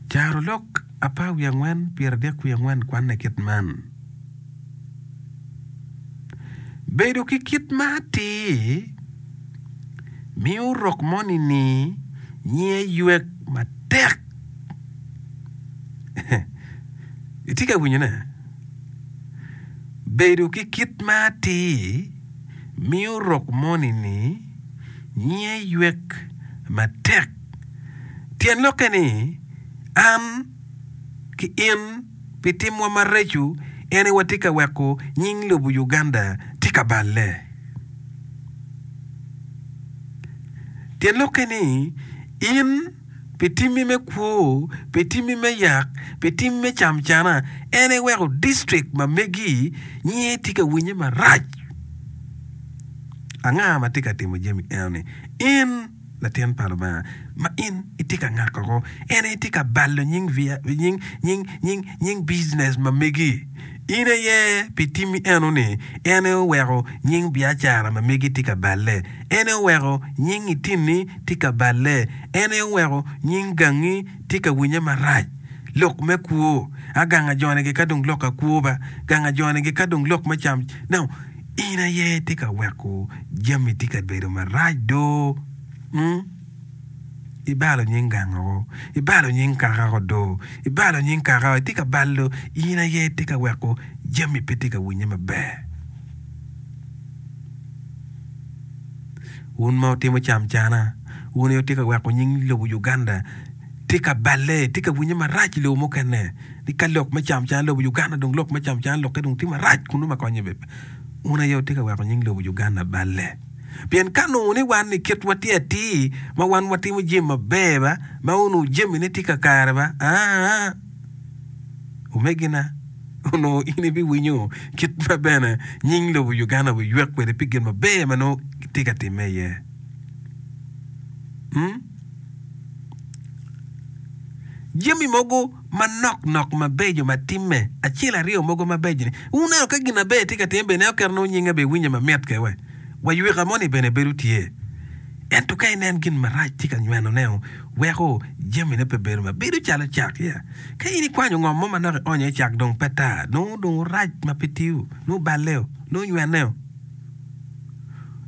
Carolok apar wiye angwen, pyeradek wiye angwen kwanne kit man, Bedo ki kit ma atir miyo rok moni ni nyinge ywek matek. Itye ka winyone? Bedo ki kit ma atir miyo rok moni ni. Nyinge ywek matek. Tyen lokke ni, an ki in pi timwa mareco ene watye ka weko nying lobo Uganda tye ka balle. Tyen lokke ni, in. pi timmi me kwo, pi timmi me yak, pi timmi me camcana, en eweko district ma megi nyinge tye ka winye marac. Anga ma tye ka timo jami enoni? In latin pa Lubanga ma in itye ka ngakko ko, en aye tye ka balo nying, nying, nying, nying, nying business ma megi. In aye pi timmi eno-ni, en aye oweko nying biacara ma megi tye ka balle, en aye oweko nying itinni tye ka balle, en aye oweko nying gangi tye ka winye marac. Lok me kwo, a gang ajonege ka dong lok akwo ba, gang ajonege ka dong lok me cam. Ineno? In aye itye ka weko jami tye ka bedo marac do. Ibalo nying gangao, ibalo nying kaka odo, ibalo nying kaka itye ka balo in aye itye ka weko jami pe tye ka winye maber. Wun ma wutimo cam cana, wun aye wutye ka weko nying lobo Uganda tye ka balle, tye ka winye marac i lobo mukene ni ka lok me cam cana lobo Uganda dong lok me cam cana lokke dong tye marac kun nongo ma konye bebe. Wun aye wutye ka weko nying lobo Uganda balle. Pien ka nongo ni wan ni kitwa tye atir ma wan watimo jami maber ba, ma onongo jamine tye kakare ba, aa, omegina, onongo in ibiwinyo kit ma bene nying lobo Uganda obiywek kwede pi gin maber ma nongo tye ka timme iye. Jami mogo manok nok mabeco ma timme acel aryo mogo mabeco ni wuneno ka gin maber tye ka time bene eo kare nongo nyinga be winye mamit ke we wa yweka moni bene bedo tye ento ka inen gin marac tye ka nyweno neo weko jami ne pe bedo ma bedo calo cak ya ka in ikwanyo ngom mo manok ionyo ecak dong pe tar nongo dong orac ma pe tiyo nongo balle o nongo nywene o.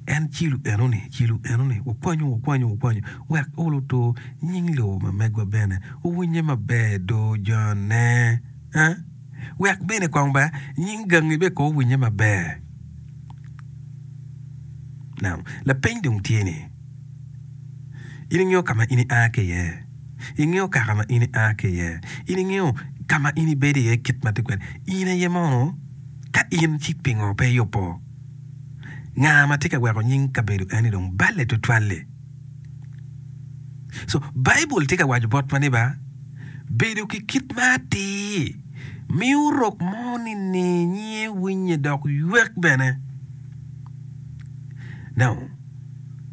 En cilo enoni, cilo enoni, wukwanyo, wukwanyo, wukwanyo, wek olo otur nying lobo ma megwa bene owinye maber i dor jone, eh? Wek bene kong ba nying gangi bene kong owinye maber. Now, lapeny dong tye ni, in ingeyo ka ma in ia ki iye? Ingeyo kaka ma in ia ki iye? In ingeyo ka ma in ibedo iye kit ma tye kwede? In aye mono Ka in, cik pingo pe iyubbo? Nga ma tye ka weko nying kabedo eni dong balle tutwal-li? Co, Baibul tye ka waco botwa ni ba, Bedo ki kit ma atir miyo rok mo nini nyinge winye dok ywek bene. Now,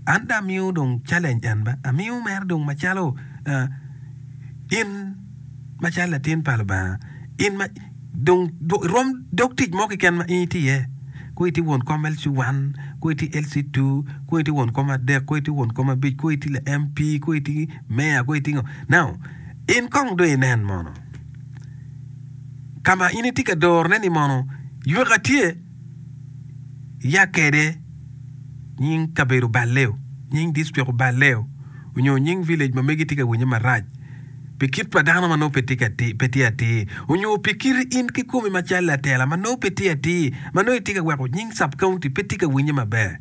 an dong amiyo dong challenge en ba, amiyo mere dong macalo, uh, in macalo latin pa Lubanga, in ma, Dong rom dog tic mo keken ma in itye iye. Kong itye won kom LC1, kong itye LC2, kong itye won kom adek, kong itye won kom abic, kong itye la MP, kong itye meya, kong itye ngo. Now, in kong dong inen mono ka ma in itye ka dorone ni mono yweka tye. Yakede, nying kabedo Baleo, nying district Baleo, onyo nying village ma megi tye ka winye marac pi kit pa dano ma nongo pe tye atir, onyo pi kiti in kikomi macalo latela ma nongo pe tye atir ma nongo itye ka weko nying sub-county pe tye ka winye maber.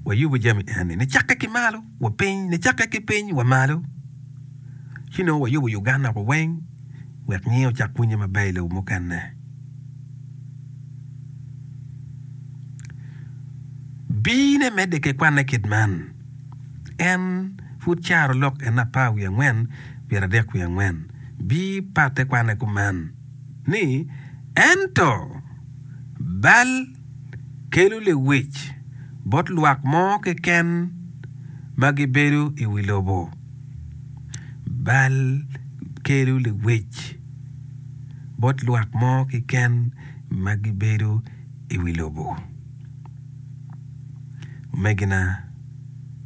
Wayubu jami eni nicakke ki malo. wa piny nicakke ki piny wa malo ci nongo wayubo Uganda wa weng wek nyinge ocak winye maber i lobo mukene. Bine medde ki kwanne kit man, en pud caro lok en apar wiye angwen pyera dek wiye angwen bi patte kwanne kuman ni, Ento bal. kelo lewic bot lwak mo keken ma gibedo i wi lobo. Bal kelo lewic bot lwak mo keken ma gibedo i wi lobo. Omegina.